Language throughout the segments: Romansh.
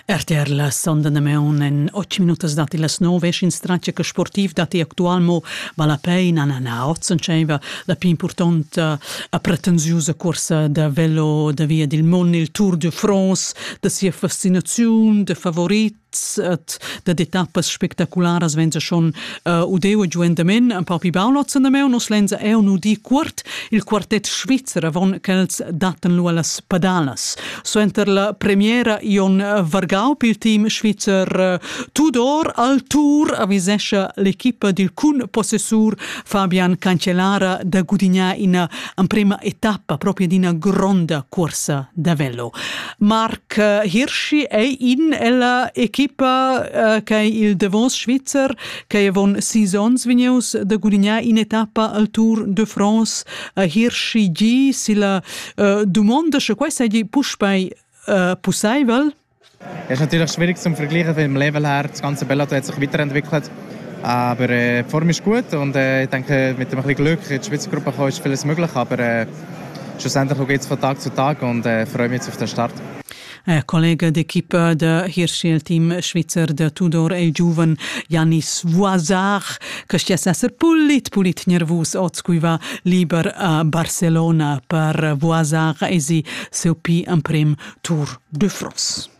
RTR la sonda na meun en 8 minutas datti las 9 ves in straccia che sportiv datti actual mo vale pein anana otzen ceva la più importanta a pretensiusa corsa da velo da via del Mont il Tour de France da sia fascinaziun de favorit da etappas spectacularas venza schon uh, udeu e giuendamen un pa pi baulozza da meu nos lenza eu nu di cuort il quartet svizzer avon ch'els datten lu las padalas suenter la premiera Jon Vargau pel team svizzer Tudor al Tour avisescha l'equipa dil cun possessur Fabian Cancellara da gudignar ina emprema etappa propria d'ina gronda cuorsa da velo Marc Hirschi è in ella equipa eh, che è il Devons Svizzer che avon sis onns vegnius da gudignar un'etappa al Tour de France a Hirschi gi silla eh, domanda sche quai seigi puspei eh, possibel? Es ist natürlich schwierig zu vergleichen, weil im Level her das ganze Bellato hat sich weiterentwickelt. Aber äh, Form ist gut und äh, ich denke, mit ein bisschen Glück in die Schweizer Gruppe kommen ist vieles möglich. Aber äh, Schlussendlich geht es von Tag zu Tag und äh, freue mich auf den Start. È collega d'equipa da Hirschel-Team Schweizer da Tudor e giuven Janis Vuazar, che stess esser pulit, pulit nervus otscuiva liber a Barcelona per Vuazar e si seu pi emprim Tour de France.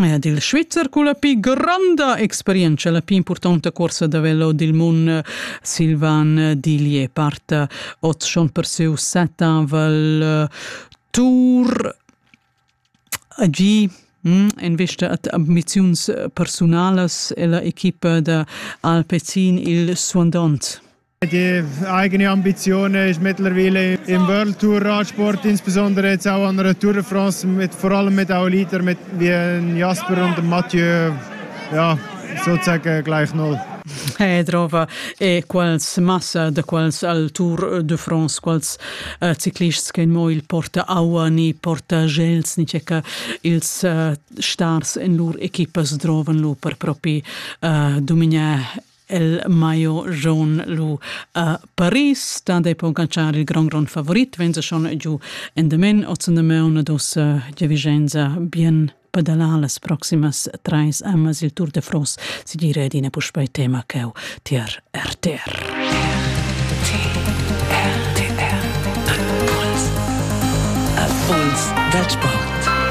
Ed il Svizzer cun la pli granda experienza, la pli importanta corsa da velo dil mund, Silvan Dillier, parta oz schon per siu setavel tour G Mm, en vista ad ambiziuns personalas ella equipa da Alpecin il suandant. Die eigene Ambition ist mittlerweile im World Tour Radsport, insbesondere jetzt auch an der Tour de France, mit, vor allem mit Aolita, mit wie Jasper und Mathieu, ja, sozusagen gleich null. e trova e quals massa da quals al Tour de France quals uh, ciclists che mo il porta aua ni porta gels ni checa ils uh, stars in lur equipas drovan lu per propi uh, dominar El maio Jaune lu a Paris, da dei po enganciar il grand grand favorit, venza schon giu endamen ozzendamaun dus eh, giavigenza bien padalà las proximas treis amas il Tour de France si dire adina puspei tema cheu tier RTR. Weltsport.